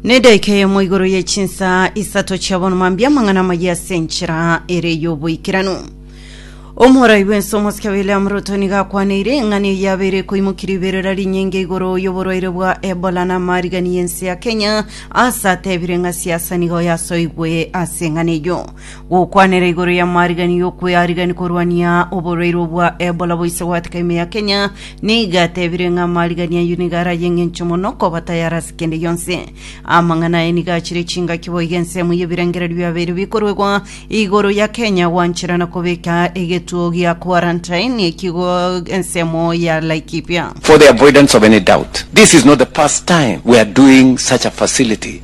nedaika eyemo igoro ye chinsa isato chiabona mambia amang'ana amaye ase enchera ere y'oboikeranu omorai bwense omosike william ruto nigo akwaneire eng'ana eye yabeire ekoimokirie iberera rinyinge igoro y'oborwaire bwa ebola na amarigani y'ense ya kenya ase atebire ng'a siasa nigo yasoigwe ase eng'ana eyo Gokwanera igoro y'amarigeani y'okwearigania korwania oborwaire obwa Ebola boise goeteka ime ya Kenya, nigo atebire ng'a amarigeani ayio nigo ara ay'engencho mono koba tayari ase kende gionsi. Amang'ana aye nigo achire chingaki boigo ensemo y'ebirengererio biabeire bikoruegwa igoro ya Kenya gwanchera na kobeka egetuo gia quarantine ekigo ensemo ya Laikipia. For the avoidance of any doubt, this is not the first time we are doing such a facility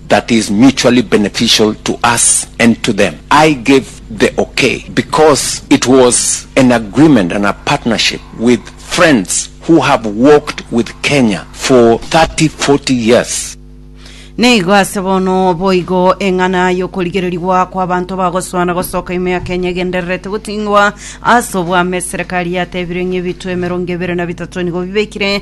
that is mutually beneficial to us and to them, I gave the okay because it was an agreement and a partnership with friends who have walked with Kenya for 30, 40 years. Nigo ase bono boigo eng'ana y'okorigererigwa kw'abanto bagosuana gosoka ime ya Kenya egendererete goting'wa ase obwame. Eserekari yatebire ng'a ebitwe emerongo ebere na bitato nigo bibekire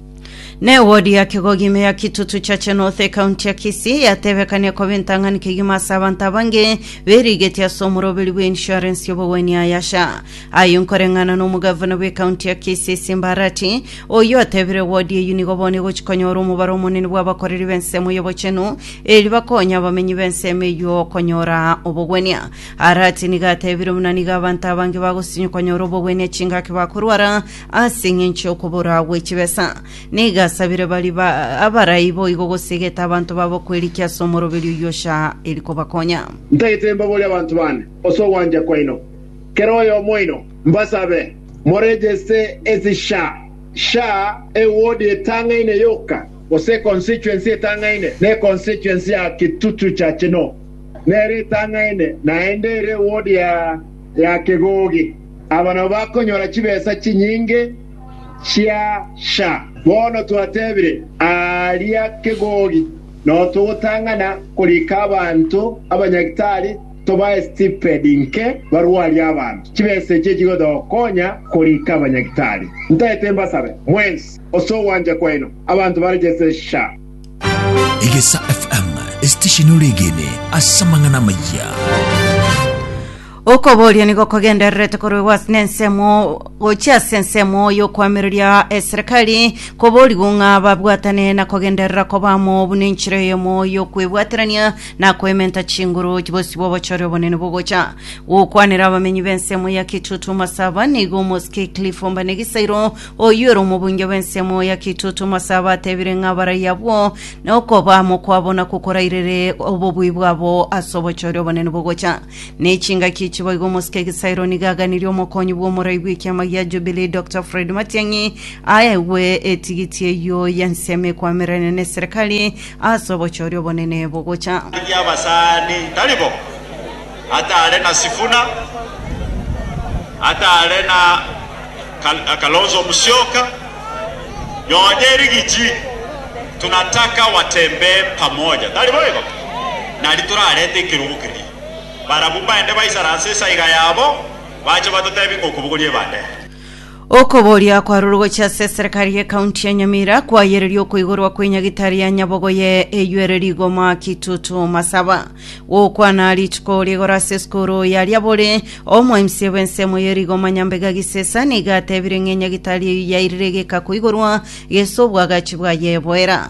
Ne wodi ya kigogi ime ya Kitutu Chache North ekaunti ya Kisii yatebekania koba entang'ani kegima ase abanto abange berigeti ase omoroberi bwa insurance y'obogwenia Ayasha. Ayo nkoreng'ana na omogavana bw'ekaunti ya Kisii Simba Arati, oyio atebire wodi eyio nigo bono egochi konyora omobaro omonene bw'abakoreri b'ensemo y'obochenu eri bakonya abamenyi b'ensemo eyio konyora obogwenia. Arati nigo atebire buna nigo abanto abange bagosinywa konyora obogwenia chingaki bakorwara Ase engencho y'okoboraa gwe chibesa, nigo asabire bari ba abarai boigo gosegete abanto babo kwerikia ase omoroberio oyio ocha eri kobakonya. Ntagete mbaborie abanto bane ase ogwancha kwaino, kera oyomo oino, mbasabe moregeste ase sha, sha, ewodi etang'aine yoka, gose econstituency etang'aine, na econstituency ya Kitutu Church no nere etang'aine, naende ere ewodi ya. ya kegogi, aba nabo bakonyora chibesa chinyinge chia sha. Bono twatebire, aaria kegogi, nao togotang'ana korika abanto abanyagitari tobae stipedi nke barwarie abanto. Chibesa echi echigotokonya korika abanyagitari. Ntaete mbasabe mwensi ase ogwancha kwaino abanto barejeste sha. Egesa FM, esitesheni oregene ase amang'ana amayia. okoboria nigo kogendererete korwegwa ase nensemo gochia ase ensemo y'okwamereria eserikari koborigwa ng'a babwatane na kogenderera kobamo buna enchera eyemo y'okwebwaterania na koementa chinguru bosibwa obochore obonene bogocha gokwanera abamenyi b'ensemo ya kitutu masaba nigo omosike cliff ombanegisairo Oyio ere omobunge bw'ensemo ya Kitutu Mose abatebire ng'a abarai abwo nokoba mokwabo na kokorairere obobui bwabo ase obochore obonene bogocha. Ne chingaki echi boigo omosike Egisairo nigo aganirie omokonyi bw'omorai bw'ekiama gia Jubilee Dr. Fred Matiang'i aegwe etigiti eyio y'ensemo ekwamererane ne serikali ase obochore obonene bogocha. Aria abasani tari bo, Atare na Sifuna, atare na Kalonzo Musyoka, nonye Rigiji, tunataka watembee pamoja, tari boigo? Nari torarete ekerogo keria, barabwo mbaende baisaranse esaiga yabo, bache batotebie ng'a okobogoria ebande eye. Okoboria kwa roro gochia ase eserekari y'ekaunti ya Nyamira kwayereria okoigorwa kwe nyagitari ya nyabogo ye eywo ere rigoma Kitutu Masaba. Gokwana rituko rigoro ase esukuru ya Liabori, omoimsie bw'ensemo ye rigoma Nyambega Gisesa nigo atebire ng'a enyagitari eyio yairire egeka koigorwa gese obwagachi bwaye boera.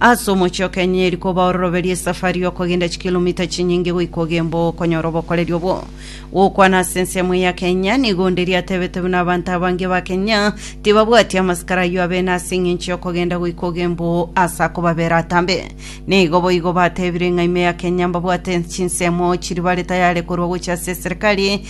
Ase omochie o Kenya eri koba ororoberi esafari y'okogenda chikilomita chinyinge goika ogemboe okonyora obokoreri obwo. Gokwana ase ensemo eye ya Kenya, nigo onde riatebete buna abanto abange ba Kenya tibabwati amasikara ayio abene ase eng'encho y'okogenda goika ogemboe ase akobabera atambe. Nigo boigo batebire ng'a ime ya Kenya mbabwate chinsemo chiri bare tayare korwa gochia ase eserekari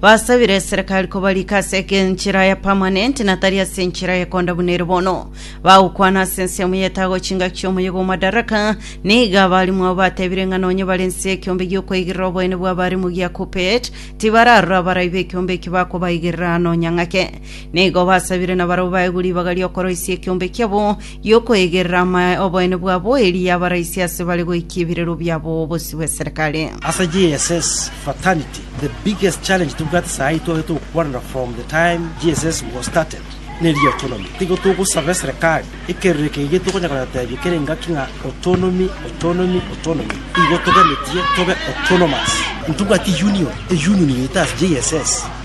Basabire eserekari kobarika ase enchera ya permanent na tari ase enchera ya konda buna ere bono. Bagokwana ase ensemo ya etago chingaki chi'omoyega o Madaraka. Nigo abarimu abo batebire ng'a nonye bare ense y'ekiombe gi'okoigerera oboene bw'abarimu gia Kuppet, tibararora abarai b'ekiombe eki bakobaigerera nonya ng'ake. Nigo basabire nabarabwo baegwe ribaga ri'okoroisia ekiombe kiabo y'okoegerera amae oboene bwa boeeri y'abaraisi ase bare goikia ebirero biabo bosio bw'eserekare. Ase GSS fraternity the biggest challenge tobwate saha eye twabete gokwanera from the time GSS was started neri autonomy. Tigo togosaba eserekari ekerero eke gige tokonya koyotebia kera engaki ng'a autonomy autonomy autonomy igo toganetie tobe autonomous. Ntobwati union, eunion yaito ase GSS.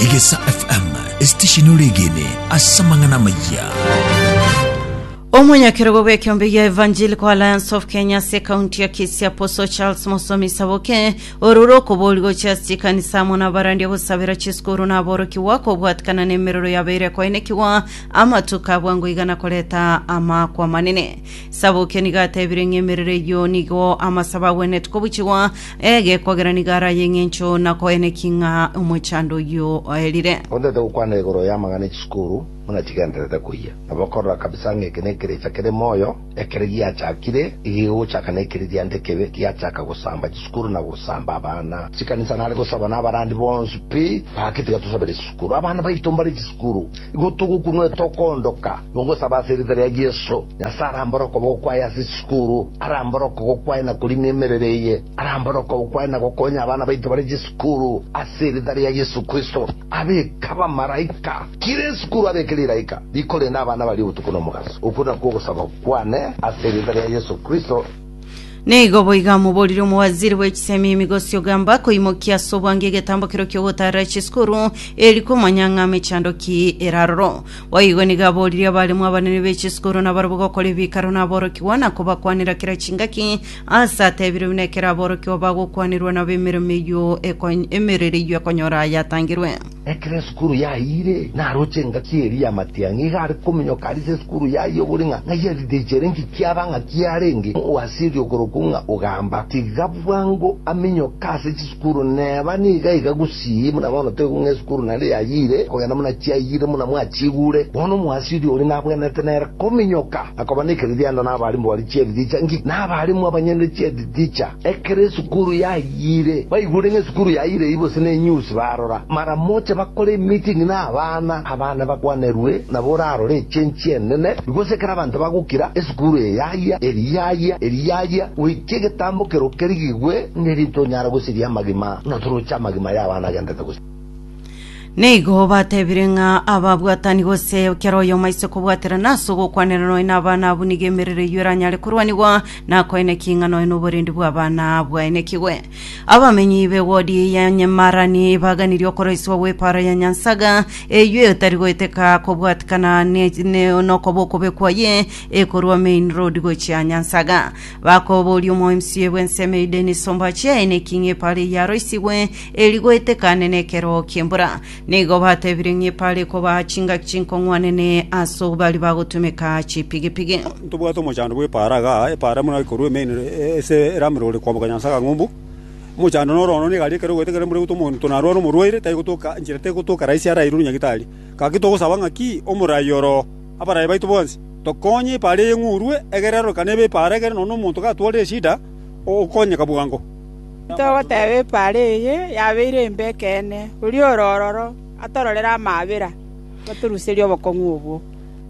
Egesa FM esitesheni oregene ase amang'ana amayia. omonyakerogo bw'ekeombe gia evangelical alliance of kenya ase ekaunti ya kisi aposo charles mosomi saboke ororo okobori gochia ase chikanisa amo nabarandia gosabera chisukuru na aborokigwa kobwatikana na emerero yabeire ekoenekigwa amatuko abwa ngoiga na koreta amakwa manene saboke nigo atebire ng'a emerero eyio nigo amasabo agwenerete kobuchigwa Ege kwagera nigo araye engencho na koeneki ng'a omochando oyio oerire. Ontaete gokwana igoro y'amang'ana e chisukuru buna chigendererete koyia. Nabo okorora kabisa ng'a eke nekerecha kere moyo, ekero giachakire, iga igogochaka nekeriria nde kebe, giachaka gosamba chisukuru na gosamba abana. Chikanisa nare gosaba nabarandi bonsi pi, gaki tiga tosabere chisukuru. Abana baito mbare chisukuru, igo togokunwa etoka ondoka. Mogosaba ase erieta ria Yeso, Nyasae arambore okoboko kwaye ase chisukuru, arambore okogoko kwaye na korina emerero eye, arambore okoboko kwaye na gokonya abana baito bare chisukuru, ase erieta ria Yeso Kristo. Abeke abamaraika. Kera esukuru abeke riraika rikorenda abana baria obotuko nomogaso. Okwo nakwo ogosaba kwane ase erieta ria Yeso Kristo. Neigo boiga moborire omowaziri bw'echisemi emigosi ogamba koimokia ase obwango egetambo kero kiogotarera chisukuru eri komanya ng'a mechando ki eraroro. Boigo nigo aboririe abaremu abanene b'echisukuru nabarabwo gokora ebikaro naborokigwa na kobakwanera kera chingaki ase atebirwe buna ekero aborokigwa bagokwanerwa nabo emeremo eyio ekony- emerero eyio ekonyora yatangirwe. Ekero esukuru yayiire, naroche engaki eria ya matiang'i, iga are kominyoka arise esukuru yaye obori ng'a ng'ai arire echere inki kiaba ng'a kiarenge oasiri okorokwa ng'a Ogamba. Tiga bwango aminyoke ase chisukuru neba niga iga gusii buna bono toigwa ng'a esukuru nare yayiire kogenda buna chiayiire buna mwachigure. Bono omoasiri oria nabwenerete nere kominyoka na koba nekeririanda nabarimu baria chieri richa inki, nabarimu abanyene chieri richa. Ekero esukuru yayiire, baigure ng'a esukuru yayiire eyio bose nenyusi, barora maramocha bakore emiting na abana, abana bakwanerwe nabo orarore echenchi enene. Igose ekero abanto bagokira, esukuru eye yayia, eria yayia, eria yayia, goika egetambo kerokirigigwe ng'erinto onyare gosiria amagima, na toroche amagima y'abana agendete gose. Nigo batebire ng'a ababwatani gose kera oyomo aise kobwaterana ase ogokwanera noe n'abana abwo nigo emerero eyio eranyare korwanigwa na koine ki ng'a noe n'oborendi bw'abana bwaenekigwe. Abamenyi b'ewodi ya Nyemarani baganirie okoroiswa gw'epaaro ya Nyansaga eyio etari goeteka kobwatikana ne- ne- nokoba okobe kwaye ekorwa Main Road gochia Nyansaga. Bakoboria omomc bw'ensemo eyio Dennis Ombachi aine ki ng'a epaaro eyio yaroisigwe eri goetekane nekeroo ki'embura. Nigo batebire ng'a epara ekobaa chingaki chinkong'wanene as'o baria bagotumeka chipigipigi. Ntobwate omochando bw'epara iga, epara buna ekorua emeino ase eramero ore koamboka Nyansa Kang'umbu. Omochando noro ono nigo aria ekero ogoeteka embura egotuoma omonto narware omorwaire, tari gotoka enchera tari gotoka rahisi arairwe omonyagitari. Gaki togosaba ng'a ki omorai oro abaraia baito bonsi, tokonye epara eye ng'urwe, egere arorokane ebe epara egere nonya omonto gatwarire eshida, okonyeka bwango. Togoteeba epaara eye yabeire embe ekeene, oria ore ororo atororere amaabera, otoruserie obokong'u obwo.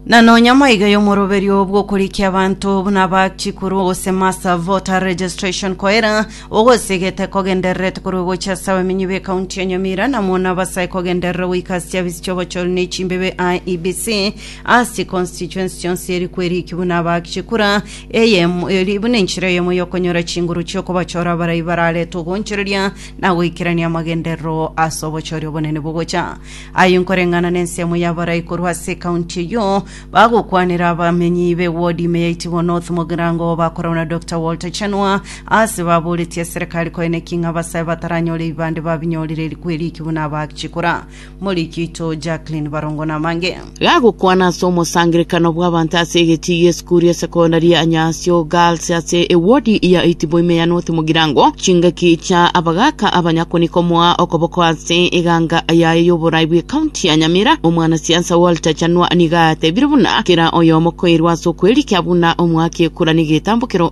Na nonya maiga y'omoroberio bw'okorikia abanto buna ba chikuru gose master voter registration koira, ogosegete kogendererete korwa gochia ase abamenyi be county ya Nyamira na mono abasae kogenderera goika ase chiafisi chi'obochori ne chimbebe IEBC ase constituency chionsi eri kweriki buna ba chikura Eyemo erio buna enchera eyemo y'okonyora chinguru chi'okobachora abarai bararete ogoonchoreria na goikerania amagenderero ase obochori obonene bogocha. Aye nkoreng'ana nensemo y'abarai korwa ase ekaunti eyio bagokwanera abamenyi b'ewodi ime ya Itibo North mogerango oo bakorwa na Doctor Walter Chanua aase baboretie eserekari koeneki ng'a abasae bataranyore ebibande babinyorire erikweri eki buna abachikora Morikito Jacqueline Barongo namange. Gagokwana ase omosangerekano bw'abanto ase egetii gi'esukuru ya sekondari ya Nyasio Girls ase ewodi ya Itiboime ya North Mugirango, chingaki chia abagaaka abanyakoni komoa okoboko ase eganga yaye y'oborai bw'ekaunti ya Nyamira. Omwanasiasa Walter Chanua nigo atebirie buna kera oyomo koirwa ase okwerikia buna omoaki ekura negetambokero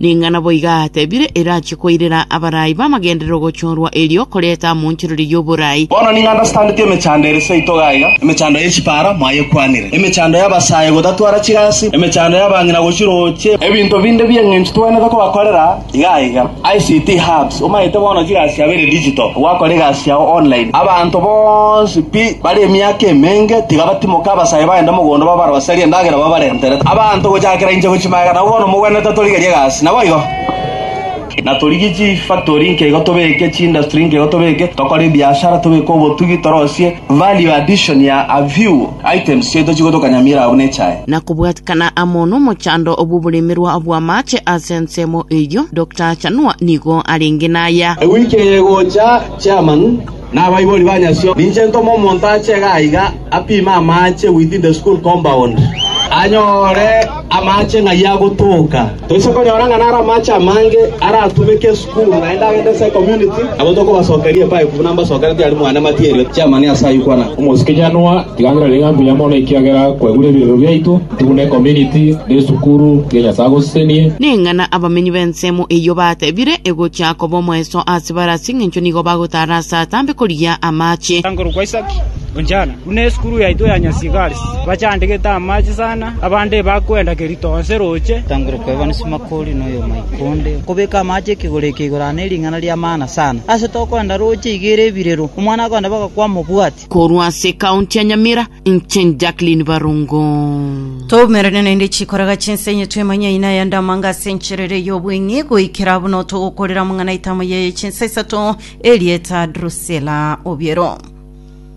Ning'ana boiga atebire erache koirera abarai b'amagenderero gochorwa erio koreta amonchoreria y'oborai. Bono ning'a ndasitandeti emechando ere seito iga iga, emechando ye chipara mwayekwanire, emechando y'abasae gotatwara chigasi, emechando y'abang'ina gochirooche, ebinto binde bi'eng'encho twenete kobakorera, Iga iga, ICT hubs, omanyete bono chigasi chiabo ere digital, gwakora egasi yao online. Abanto bonsi pi bare emiaka emenge tiga batimoke abasae bagende mogondo babaroserie endagera babarentere. Abanto gochakera inche gochia magega nabo bono mogwenerete torigerie egasi. Naboigo? Na torigie chifactory inke igo tobeke, chiindustry inke igo tobeke, tokore ebiashara tobeke obotugi torosie value addition ya a few. Items chiaito chigotokanyamiera abwo nechae. na kobwatikana amo nomochando bw'oboremerwa bw'amaache ase ensemo eyio, Doctor Achanua nigo arenge naya. Ewiki eye egocha, Chairman na abaibori ba nyasio, ninche ntome omonto ache iga aiga apime amaache within the school compound, anyore amaache ng'ai agotoka. Toise konyora ng'a naro amache amange aratumeke esukuru, naende agende ase ecommunity, abwo tokobasokeria epipe buna mbasokerete aria mwane material chiamani ase ayio kwana. Omosikijanwa, riganera rig'ana mbuya mono ekiagera kwegure ebiegwa biaito, tugune ecommunity na esukuru, tiga Nyasae agosesenie. Ning'ana abamenyi b'ensemo eyio batebire egochia koba omoeso ase bare as'engencho nigo bagotara ase atambe korigia amache. Korwa kwa Isaki, Onjana. Buna esukuru yaito ya Nyasigaris, bachandegete amache sana, abande bakwenda kerito onsi roche. Tangera okwebana Simakori na oyomoika onde, okobeka amache ekegoro eke igoro aa nering'ana ri'amaana sana. Ase tokoenda roche iga ere ebirero, omwana akoenda bagakwama obwati. Korwa ase ecounty ya Nyamira, inche Jacqueline Barongo. Toumerane naende chikoraga chinsenyi twemanye aina aya ndamanga ase enchera ere y'obweng'e goikera buna togokorera amang'ana aitamo yaye chinsa isato, Erieta Drusilla Obiero.